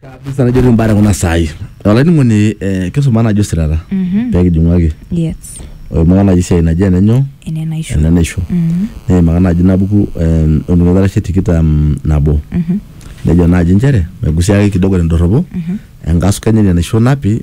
kabisa najoki imbaa kuna saai olainining'oni eh, kisuma najo sirata Mhm. peekijing'uaki Yes. oimaka naji siai naji enenyo Ene naisho. enenaisho Mhm. neimaka naji nabuku em, oltung'ani oitarashe tikitam nabo Mhm. nejo naji nchere megusiaki kidogo tendorropo Mhm. enkasuku enye ina naisho napi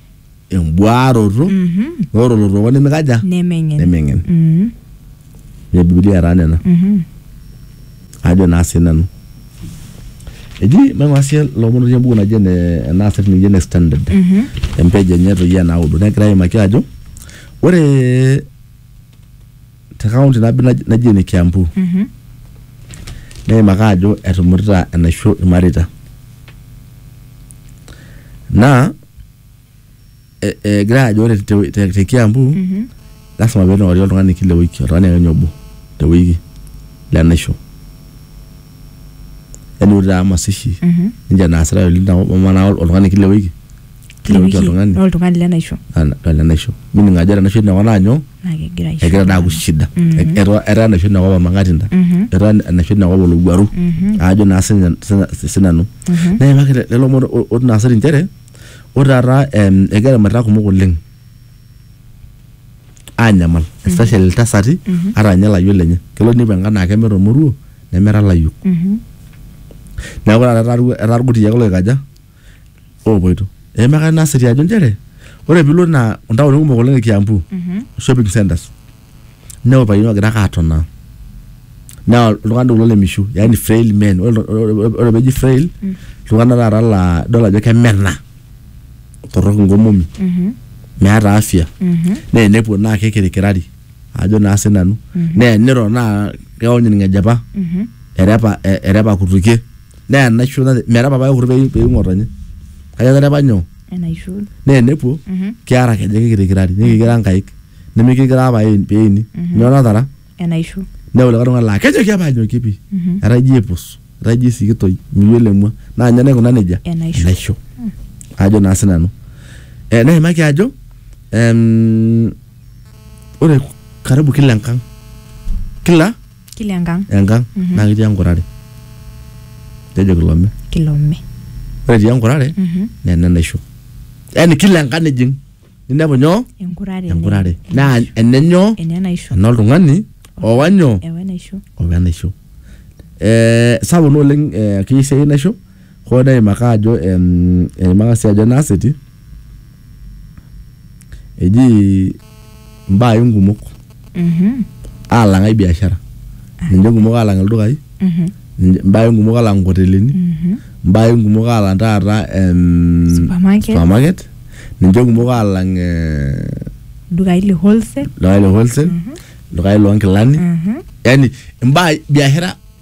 embuaroto Mhm. ore olotooko nemikaja Nemeng'en. nemeng'en Mhm. ne bibilia taa nena Mhm. ajo naa sii nanu eji maing'ura sii lomon otii embuku naji ene ena asili naji ene standard Mhm. empeji enye toi enaudo negira aimaki ajo ore te kaunti nabo naji naji ene kiambu Mhm. neimaka ajo etumutita enaisho irmareita naa eh, eh, egira ajo ore te, te, te kiambu mm -hmm. lasima pee eing'ori oltung'ani kila wiki oltung'ani akenya obo te wiki le naisho yani ore taa masishi mm -hmm. ninche naasitae oleng tenakop amu naa oltung'ani kila wiki kila wiki oltung'ani oltung'ani le naisho le naisho mining ajo ore enaisho inakop naa nyoo naa kegira aisho egira naa aku shida etaa etaa enaisho tinakop ormang'atinda etaa enaisho tinakop olowuaru aajo naa sinya- sinya- sinanu neimaki le- lelo omon o- otii naa siri inchere ore taata em, egira irmareita kumok oleng anyamal especially iltasati ata ninye ilayiok lenye kelo ninepu enkae naa kemeeta ormoruo nemeeta ilayiok neeku taata etaa irkutiak loikaja oopoito. Eimaka ina siri ajo nchere ore piilo naa ntaoni kumok oleng e Kiambu shopping centers inepu irpayiani oogira ake atonaa naa iltung'anak doi kulo le mishu yaani frail men. Ore iltu- ore peeji frail iltung'anak taata laa idol ajo kemena, torrok inkomomi, meeta afya naa enepuo naa kikirikirari ajo naa sinanu naa eniro naa keony ilng'ejepa erepa erepa kutukie. neya enaisho nate- metaa papa kekure eyieu peyieu ng'otonye kake etaa apa nyoo enaisho naa enepuo Mhm. kiara kenya kikirikirari nikikira nkaik nimikikira apa aen- peeni nyoo natara enaisho neya likae tung'ani laa kejoki apa anyokie pii Mhm. etaa ijo epus etaa ijo esikitoi miyiolo emua naa ninye naikuna nejia Enaisho. enaisho ajo naa sinanu eh, neimaki ajo em, ore karibu kila enkang kila Kila enkang. enkang Mhm. naa ketii enkurare kejo kilome Kilome. ore etii enkurare Mhm. naa ene naisho yaani kila enkang nijing ninepu nyoo Enkurare. enye. enkurare naa ene nyoo Ene naisho. ena oltung'ani owa nyoo Ewe naisho. owa enaisho eh, sapuk naa oleng eh, keyieu sii enaisho Hoo neimaka ajo eimaka sii ajo enaaseti eji mbaa inkumok alang ai biashara ninche nkumok alang ildukai mbaa inkumok alang nkotelini mbaa inkumok alang taata em, Supermarket. supermarket ninche nkumok alang eh, dukai le wholesale ldukai le wholesale ldukai loonkilani yani mbaa biashara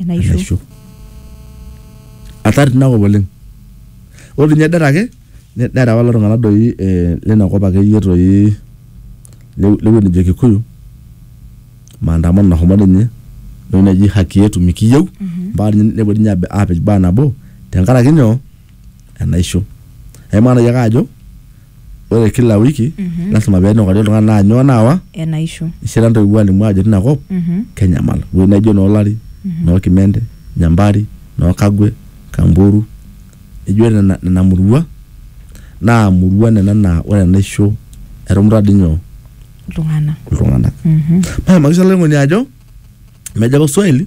enaisho enaisho atar tinakop oleng ore ninye det ake ne- neeta apa lelo tung'anak doi eh, lina kop akeyie toi le- lewueji nejo kikuyu maandamano nahomo ninye entoki naji haki yetu mikiyieu mpaka ninye nepuo ninye abe- apej baa nabo tenkaraki nyoo enaisho aimaa nai ake ajo ore kila wiki lasima pee enukari oltung'ani naa nyoo naawa enaisho ishira ntoiwuo alimu ajo tina kop Mhm. kenyamal ewueji naijo noo lari noo kimende nyambari noo kagwe kamburu ijo nena nena murua naa murua nena naa ore enaisho etumuta dii nyoo iltung'anak iltung'anak Mhm. maimaki sii olainining'oni ajo mejo apa swahili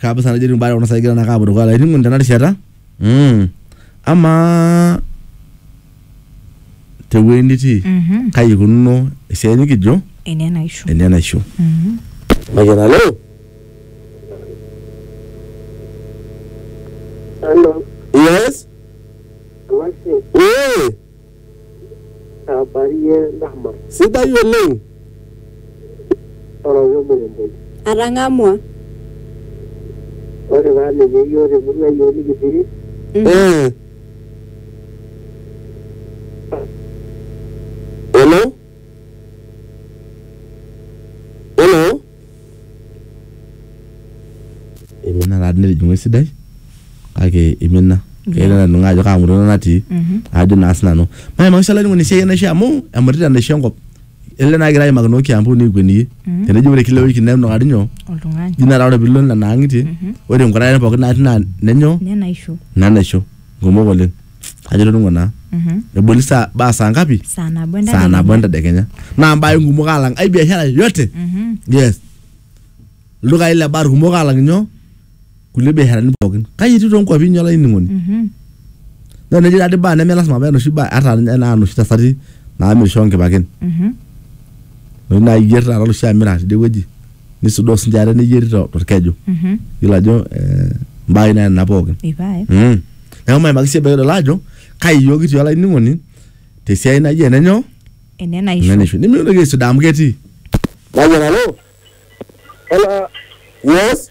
kabisa najo etiu mbaya kuna saai egira naake aapuo dukuya olainining'oni tena rishata mm. amaa tewueji nitii Mhm. kai ikununo esiai nikijo Ene enaisho. ene enaisho Mhm. Mayian alo Hello, yes what's it? ee Abarie Dama, Sidai oleng. ore olmuremboi. Atang'amua. Ore taa ninye iyiook te murua iyiook nikipiri. Eh. Hello? Hello? Imina taa netijing'u esidai kake imina keitodolu ajo kaa murua natii ajo naa sinanu maimakisha olainining'oni esiai enaisho amu emutita enaisho enkop ele naa kigira aimaki noo Kiambu nikikueniyie teneji ore kila ewiki nenukari nyoo oltung'ani ji metaa ore piilo nena ang'itie ore inkutare pookin natii naa nenyoo nenaisho nenaisho kumok oleng. ajo itoning'o naa Mhm. eboli saa baa saa ngapi saa nabo saa nabo entadekenya. entadekenya naa mbae kumok alang ai biashara yote Mhm. yes ildukai le bar kumok alang nyoo kulie biasharani pookin kai etiu toonkuapi inyi olainining'oni Mhm. naa neji taadi baa neme lasima paa enoshi baa ata ninye naa inoshi tasati naamirisho nkipaken Mhm. enoshi naayier taata oloshi amira tidie wueji nisudoo sinche ate neyieri to- torkeju Mhm. yiolo ajo eh, mbaai naa nena pookin Ipae. Mm. neeku maimaki sii ebaiki idol ajo kai iyiook kitii olainining'oni tesiai naji ene nyoo Ene ene naisho. naisho nimikintoki aisudaa amu ketii Hello. Yes.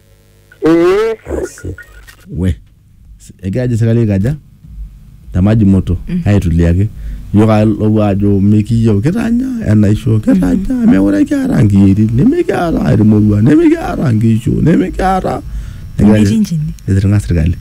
ee we S- egira ajo sirkali aikaja te maji moto aituliaki iyiok ake lopuo ajo mikiyieu kitanya enaisho kitanya mekure kiata nkiyietin nimikiata irmoruan nimikiata nkishu nimikiata Egira ajo- Nkirinjini. etirng'a sirkali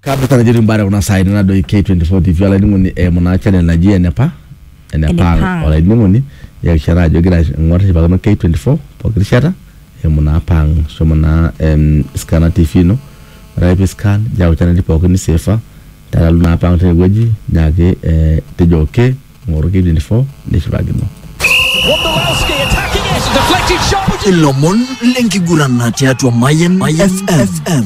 kabla tanajo timbare kuna saai nadoi K24 TV olainining'oni eimu naa channel naji enepa enepa Enepang. olainining'oni yakishata ajo igira aing'or nishipakino K24 pooki rishata eimu naa pang shomo naa em, scanner TV ino ore ake pi scan niyau channel pooki niseefa nitalu naa pang tinewueji nyaaki eh, tejo okay Ng'oru KTN Sport nishipakino. Ilomon lenkigurana tiatua Mayan FM.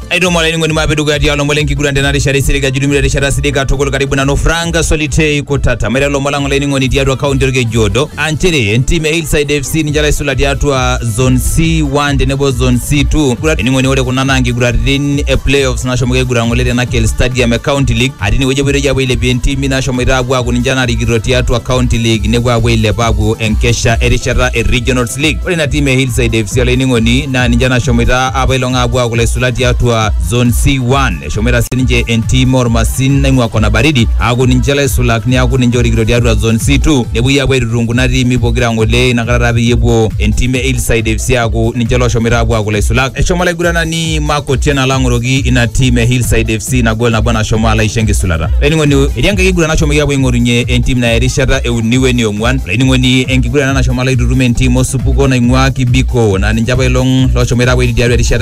Aidomo olainining'oni maape dukuya tialo lomon lenkiguran tena rishata esirika ajuru mira rishata sidai katukul karibu nanu Frank Solitei Kutata maiteru lomon lang olainining'oni tiatua kaunti Olkejuodo aa nchere entim e Hillside FC ninche laisula tiatua zone C1 tenebo zone C2 Kiguran- olainining'oni ore kuna naa nkiguraritin e playoffs nashomoki aiguran ng'ole te Nakel Stadium e County League atii inewueji epoitoi aapuo ailepie ntimi nashomoita aapuo aaku ninche narikito tiatua County League nepuo aapuo ailep aapuo enkesha erishata e Regionals League. Ore ina tim e Hillside FC olainining'oni naa ninche nashomoita apailong aapuo aaku laisula tiatua Zone C1. Eshomoita sininche entim ormasin naing'ua Kona Baridi aaku ninche laisulak neaku ninche orikito tiatua Zone C2 nepuoi aapuo aitutum kuna tiimi pokira ng'ole inakata taa peyie epuo entim e Hillside FC aaku ninche loshomoita aapuo aaku laisulak. Eshomo olaiguranani ni mako tena lang'oroki ina team e hillside fc nagol nabo nashomo alo aisho enkisulata olainining'oni etii enkae kiguran nashomoki apuo aing'orunye entim naya erishata euni weni ong'uan olainining'oni enkiguran ena nashomo alo aitutum entim osupuko naing'ua kibiko naa ninche apailong loshomoita apuo aiti tiatua erishata